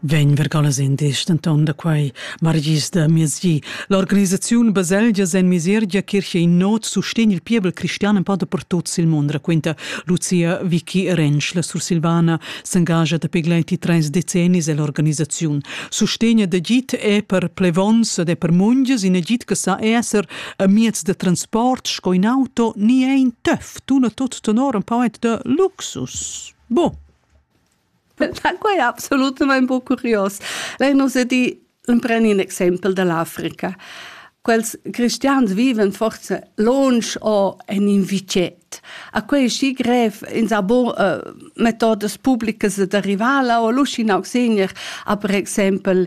Vegn vergalas in dis denton da quei margis da miezgi. L'organisaziun Baselgia sen Misergia Kirche in not sustegn il pievel cristian en pada per tuts il mond, raquenta Lucia Vicky Rensch. La Sursilvana s'engagia da pegleiti treis decennis ell'organisaziun. Sustegn da git è per plevons ed è per mungias in agit che sa esser a miez da transport sco in auto ni è in töff. Tuna tut tenor un poet de luxus. Boh. Da quai è absolutamain bo curios. Lei nos è di preni un exempel dall'Africa. Quels cristians viven forse longe o en in vicet. A quei schi grev in sa bon uh, metodas pubblicas da rivala o l'uscin auxegner a per exempel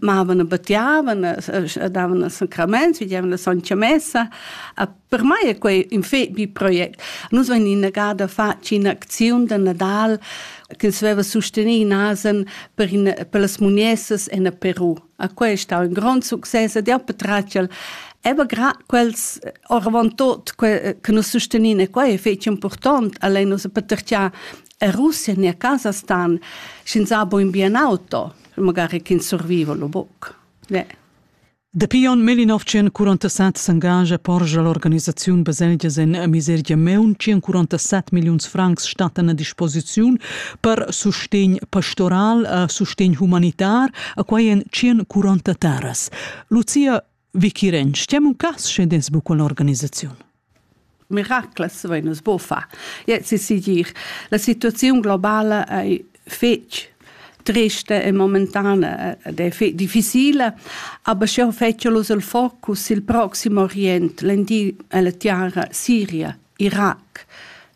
mavan a battiavan, davan sacraments, vidiavan la soncia messa. Per mai è quei in fet bi project. Nus vein innegada fatg in'acziun da Nadal che veva sostenì nasen per, in, per las muniessas en Peru. A quei è stato un grande succes ed jau patratgel Eva grad quels oravant tot che, che nus sostenian e quei è fetg important, allein nus patertià a Russia ne a Kasahstan, sch'ins ha bo in bien auto. magari ch'ins surviva lo buc. Ne. Dapi onn 1947 s'engagia porscha l'organisaziun baselgias en misergia meun 147 milliuns francs stattan a disposiziun per sustegn pastoral e sustegn humanitar a quai en 140 terras. Lucia Vikiren, stiam un cas sche des bu con organisaziun? Miracles vein es bo fa. Ja, si si dir, la situaziun globala ei fetg triste e momentanea ed è fe- difficile, aber schon fetschelus il focus il proxim Orient, l'Endir e la Tiara, Siria Irac,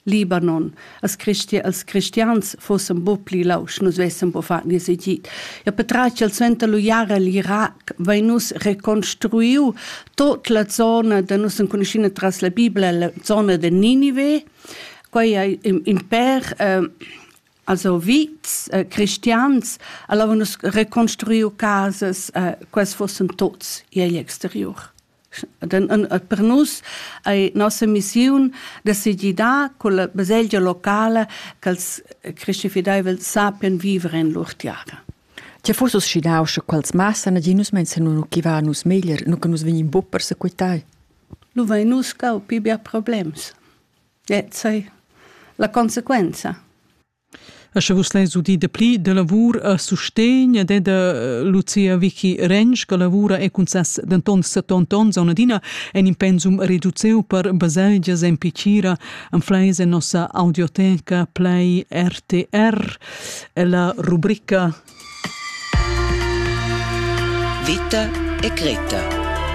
Libanon, als, christi als cristians fossen bo pli lausch, nus vessen bo far nies egid. Ja petratg al suenter lu jara l'Irac vein nus reconstruiu tot la zona da nus enconuschina tras la Bibla, la zona de Ninive, quei ei in per eh, also vits eh, cristians, allora nus reconstruiu casas, eh, quels fossen tots igl exterior. per nus ei nossa missiun decidir da con la baselgia locala ch'els cristifideivels sappien viver en lur tiara. Che fus uscidau sche quels massa naginus menzionunu chi va nus meglier, nu che nus vegnim buc persequitai? Nu vai nus cau pi bia problems. Et sei la conseguenza. E sche vus leis udir dapli da lavur a sustegn ed è da Lucia Vicky Rensch che lavura e cun ses denton 70 onns auna adina en in pensum reduceu per baselgias en Picira en fleis en nossa audioteca Play RTR e la rubrica Vita e Greta